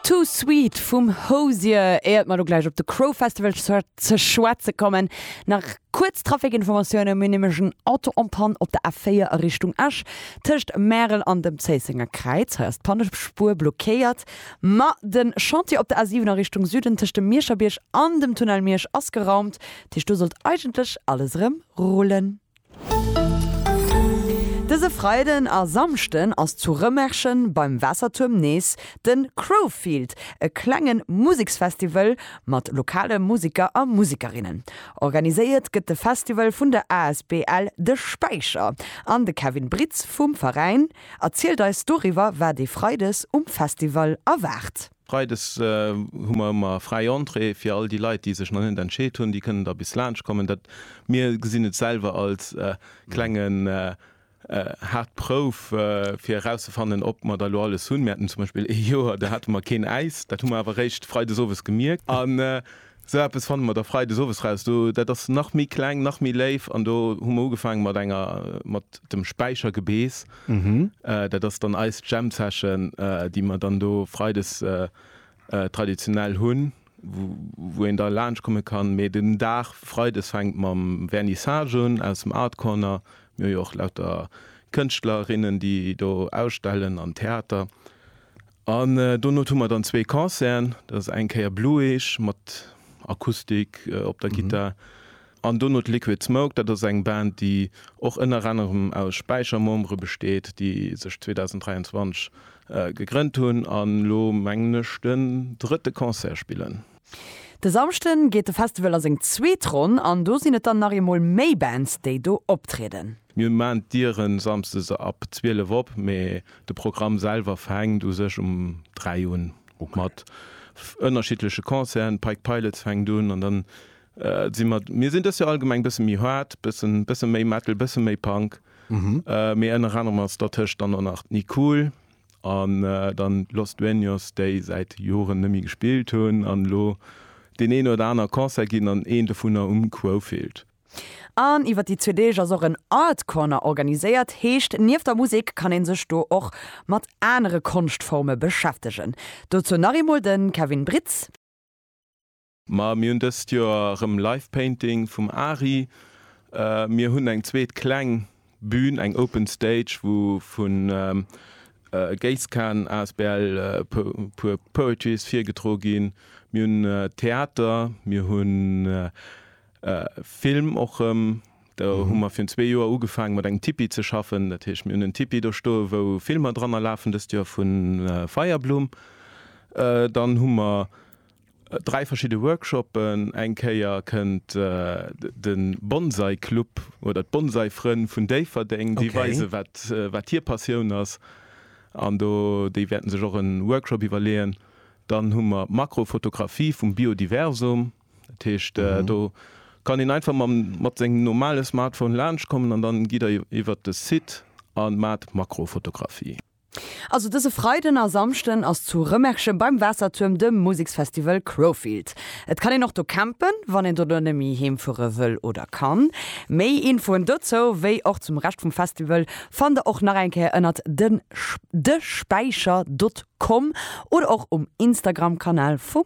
Too Sweet vum Hozier, éiert mer lo gläich op de Crow Festival ze schwätze kommen, nach kuerz Trafikinformatiounen. Mir hunn nämlech en Auto en panne op der A4 a Richtung Esch, tëscht Märel an dem Zéissenger Kräiz. Hei ass d'Pannespuer blockéiert. Ma de Chantier op der A7 a Richtung Süden, tëscht dem Mierscher Bierg an dem Tunnel Miersch, ass geraumt. Dat heescht, do sollt eigentlech alles erëm rullen. Dëse Freiden a Samschden ass zu Rëmerschen beim Waassertuerm nees de Crowfield, e klenge Museksfestival mat lokale Museker a Musekerinnen. Organiséiert gëtt de Festival vun der asbl De Späicher an de Kevin Britz vum Veräin erzielt eis doriwwer, wat ee Freides um Festival erwaart. Freides hu mer ëmmer fräi Entrée fir all déi Leit, déi sech nach net entscheet hunn. Déi kënnen da bis laanscht kommen. Dat, mir gesinn et selwer als klengen haart Prouf, fir erauszefannen, ob mer da lo alles hunn. Mir haten zum Beispill ee Joer, do hate mer keen Äis. Dat hu mer awer eréischt freides owes gemierkt. Sou eppes fanne mer da Freides owes raus. Do, dat ass nach méi kleng, nach méi léif. An do hu mer ugefaange mat enger, mat dem Späichergebeess. Dat ass dann eis Jam-Session, déi mer dann do Freides traditionell hunn, wou een da laanscht komme kann. Mee den Dag Freides fänkt mam Vernissage un aus dem Art Corner. Mir hu jo och lauter Kënschtlerinnen, déi do ausstellen, an Theater. An donot hu mer dann zwee Concerten, dat ass eng Kéier Blueage mat Akustik op der Gittar an donot Liquid Smoke. Dat ass eng Band, déi och ënner anerem aus Späicher-Membere besteet, déi sech 2023 gegrënnt hunn an elo, mengen ech, den drëtte Concert spillen. De Samschden geet de Festival a seng zweet Ronn an do sinn et dann nach eemol méi Bands, déi do optrieden. Mir maan d'Dieren Samsdes ab 12 op, mee de Programm selwer fänkt u sech um 3 un, mat ënnerschiddleche Concerten. Pike Pilots fänkt un an dann sinn mer, mir sinn dës Joer allgemeng bësse méi hard, bëssen bësse méi Metal, bësse méi Punk, mee ënner anerem ass dertëscht dann och nach d'Nicool an dann Los Dueños, déi säit Joren nëmme gespillt hunn an elo deen een oder aner Concert ginn an een dovunner um Quofield. An iwwer déi zwee Deeg ass och en Art Corner organiséiert, heescht nieft der Musek kann een sech do och mat anere Konschtforme beschäftegen. Dozou nach eemol de Kevin Britz. Ma mir hunn dëst Joer erëm Live Painting vum Ari. Mir hunn eng zweet kleng Bühn, eng Open Stage, wou vu Geiskan asbl puer Poetries virgedro ginn. Mir hunn Theater, mir hunn Film och rëm. Do hu mer virun zwee Joer ugefaange mat engem Tipi ze schaffen. Dat heescht, mir hunn en Tipi do stoe wou Filmer dranner lafen, dëst Joer vu Feierblumm. Dann hu mer dräi verschidde Workshoppen. Eng Kéier kënnt de Bonsai-Club oder d'Bonsai-Frënn vun Déifferdeng, déi weise wat hir Passioun ass an do déi wäerten sech och e Workshop iwwerleeën. Dann hu mer d'Makrofotografie vum Biodiversum. Dat heescht äh, mhm. do kann een einfach mam, mat sengem normale Smartphone laanscht kommen an dann gitt der iwwer de Site an mat Makrofotografie. Also dëse Freiden a Samschden ass zu Rëmerschen beim Waassertuerm de Museksfestival Crowfield. Et kann een och do campen, wann een dono net méi heem fuere wëll oder kann. Méi Infoen dozou, wéi och zum Rescht vum Festival, fannt der och nach eng Kéier ënnert den de Späicher dot com oder och um Instagram-Kanal vum